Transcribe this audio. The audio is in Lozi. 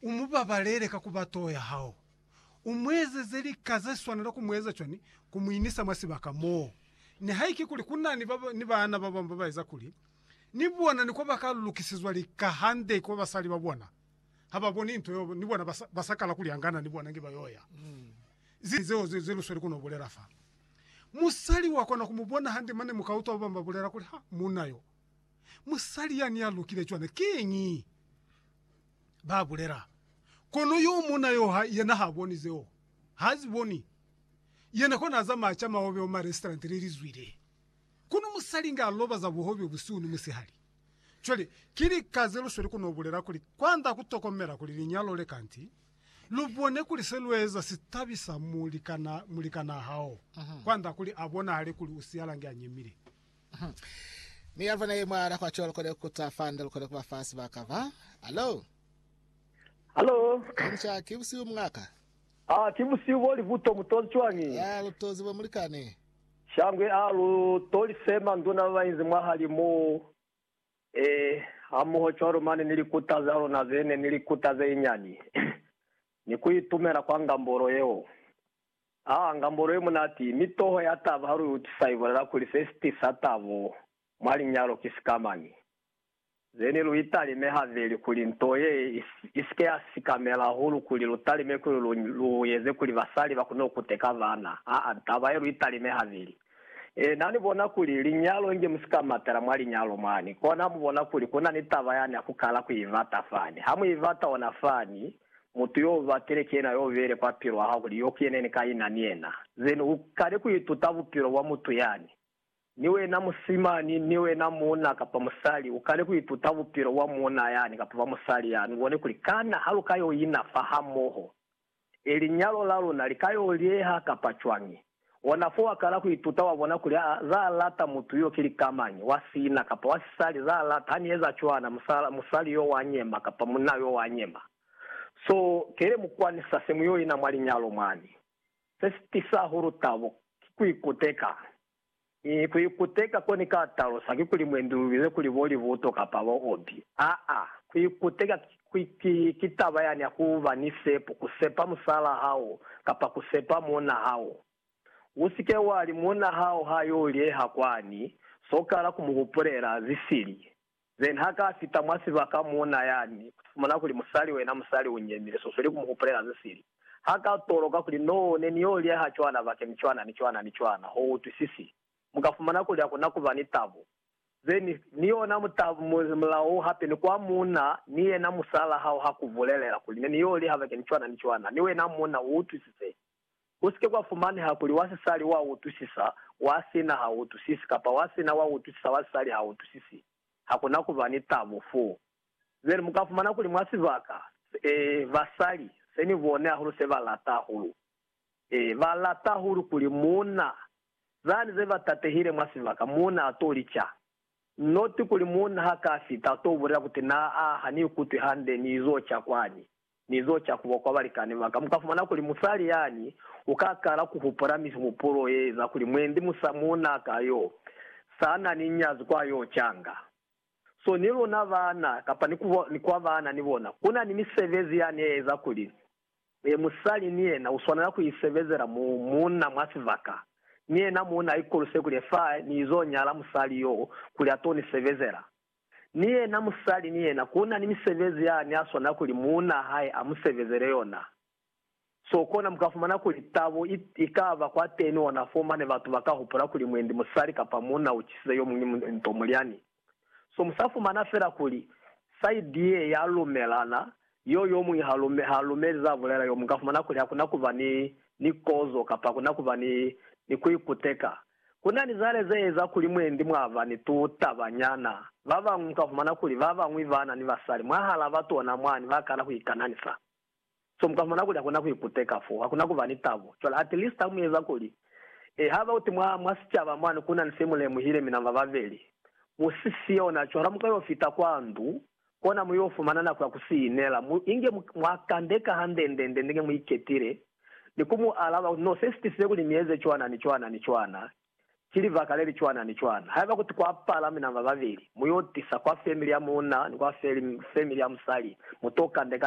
U mu babalele ka ku ba toho ya hao. U mu ezeze lika ze swanela ku mu eza cwani? Ku mu inisa mwa sibaka mo nihaike kuli ku na ni baana ba bañwi ba ba eza kuli ni bona ni ko ba ka lukisizwa lika hande kwa basali ba bona ha ba boni nto yeo ni bona ba sa kala ku lyangana ni bona nge ba y'o ya. Ze zeo ze lu sweli ku no bulela fa. Musali wa kona ku mu bona hande mane mu ka utwa ba bañwi ba bulela kuli, Ha, muuna yo, musali yani ya lukile cwana. Kiñi? ba bulela, Kono yo muuna yo ha yena ha boni zeo. Ha zi boni. Yena kona a zamaya ca mahobe mwa marestaurant le li zwile. Kono musali nga loba za buhobe busihu ni musihali. Cwale, ki lika ze lu sweli ku no bulela kuli kwand'a ku tokomela kuli linyalo le kanti, lu bone kuli se lu eza si tabisa mulikanaa hao, kwand'a kuli a bonahale kuli u siyalange a nyemile. Hmm. Mi ya vona ye mwala kwa cho lukole kuta fanda lukole kuba fa sibaka ba. Hello. Hello. Kamsha ki busiu mngaka. Ah, ki busiu bo li buto mutozi chwani. Ya lutozi bo mulikane. Shangwe a lu toli sema nduna ba inzi mwahali mo. Eh, hamoho chwalo mane ni likuta za lona zene ni likuta ze inyani. Ni ku itumela kwa ngambolo yeo. Haa, ngambolo ye munati, mi toho ya taba ha lu i utisa i bulela kuli se si tisa tabo mwa linyalo ki sikamani. Zeni lu italime habeli kuli nto ye i si ke ya sikamela hahulu kuli lu talime kuli lu lu eze kuli basali ba kone ku kuteka bana. Aa, taba ye lu italime habeli. Ena ni bona kuli linyalo inge mu si ka matela mwa linyalo mwani, kona ha mu bona kuli ku na ni taba yani ya ku kala ku i bata fani. Ha mu i bata ona fani, Mutu yo ba keleke yena yo bele kwa pilu ya hao kuli yo keneni ka ina ni yena, then u kale ku ituta bupilo bwa mutu yani. Ni wena musimani, ni wena muuna kapa musali, u kale ku ituta bupilo bwa muuna yani kapa bwa musali yani, u bone kuli kana ha lu ka yo ina fahamoho, e linyalo la luna li ka yo lieha kapa cwañi. Ona fo wa kala ku ituta wa bona kuli aa za lata mutu yo ki likamañi, wa sina, kapa wa sisali, za lata. Ha ni eza cwana, musala, musali yo wa nyema, kapa munna yo wa nyema. So, kele mu kwanisa se mu yo ina mwa linyalo mwani. Se si tisa hahulu tabo, ki ku ikuteka. Mi ku ikuteka ko ni ka talusa ki kuli mwendi lu bize kuli bo libuto kapa bo obi. Aa, ku ikuteka ki, ki, ki taba yani ya ku ba ni sepo, ku sepa musalaa hao, kapa ku sepa muuna hao. U si ke wa li, Muuna hao ha yo lyeha kwani, sokala ku mu hupulela, zisili. Then ha ka fita mwa sibaka muuna yani, u fumana kuli musali wena musali u nyemile, so sweli ku mu hupulela ze sili. Ha ka toloka kuli, Noo, ne ni yo liaha cwana bakeni cwana ni cwana ni cwana, ho utwisisi. Mu ka fumana kuli hakuna kuba ni tabo. Ze ni, ni yona mutabo, mu, mulao u hape ni kwa muuna ni yena musala hao ha ku bulelela kuli, Ne ni yo liha bakeni cwana ni cwana, mi wena muuna u utwisize. Ku si ke kwa fumaneha kuli wa sisali u a utwisisa, wa sina ha u utwisisi, kapa wa sina wa utwisisa, wa sisali ha utwisisi. Ha ku na ku ba ni tabo foo. Bjale mu ka fumana kuli mwa sibaka se, basali, se ni bone hahulu se ba lata hahulu, ee, ba lata hahulu kuli muuna, zani ze ba tatehile mwa sibaka, muuna a to lica. Noti kuli muuna ha ka fita, a to bulela kuti, Naa, ha ni ikutwi hande, ni izo ca kwani. Ni zo ca kuba kwa balikani baka, mukafumana kuli musali yani uka kala kuhupula mihupulo yeeza kuli mwendi musa muuna ka yo sana ni nyazi kwa yo canga. So ni luna baana kapa ni kwa baana ni bona, kuna ni misebezi yani yeeza kuli musali ni yena uswanela ku isebezela muuna mwa sibaka, ni yena muuna aikoluse kuli fa ni izo nyala musali yo kuli ato ni sebezela. Ni yena musali ni yena ku na ni misebezi ya ne a swanela kuli muuna hae a mu sebezele yona. So kona mu ka fumana kuli tabo i, i ka ba kwateni ona foo mane batu ba ka hupula kuli mwendi musali kapa muuna u cisize yo muñwi nto mulyani. So mu sa fumana fela kuli saidi ye ya lumelana, yo yo muñwi ha, ha lumeli za bulela, yo mu ka fumana kuli ha ku na ku ba ni, ni kozo kapa ha ku na ku ba ni, ni ku ikuteka. Ku na ni zale ze eza kuli mwendi mwa ba ni tu taba nyana. Ba bañwi mu ka fumana kuli ba bañwi ba na ni basali mwahal'a batona mwani ba kana ku ikananisa. So mu ka fumana kuli ha ku na ku ikuteka fo, ha ku na ku ba ni tabo. Cwale at least ha mu eza kuli, eh, ha ba uti mwa, mwa sicaba mwani ku na ni se mu lemuhile mina ba babeli, mu si siyo na cwalo ha mu ka yo fita kwa ndu, kona mu yo fumana nako ya ku si inela, mu inge mwa kande ka hande nde nde nge mu iketile, ni ku mu alaba, No, se si tisize kuli ni eze cwana ni cwana ni cwana, ki libaka le li cwana ni cwana. Haiba kuti kwa pala mina ba babeli, mu yo tisa kwa family ya muuna ni kwa family ya musali, mu to kande ka.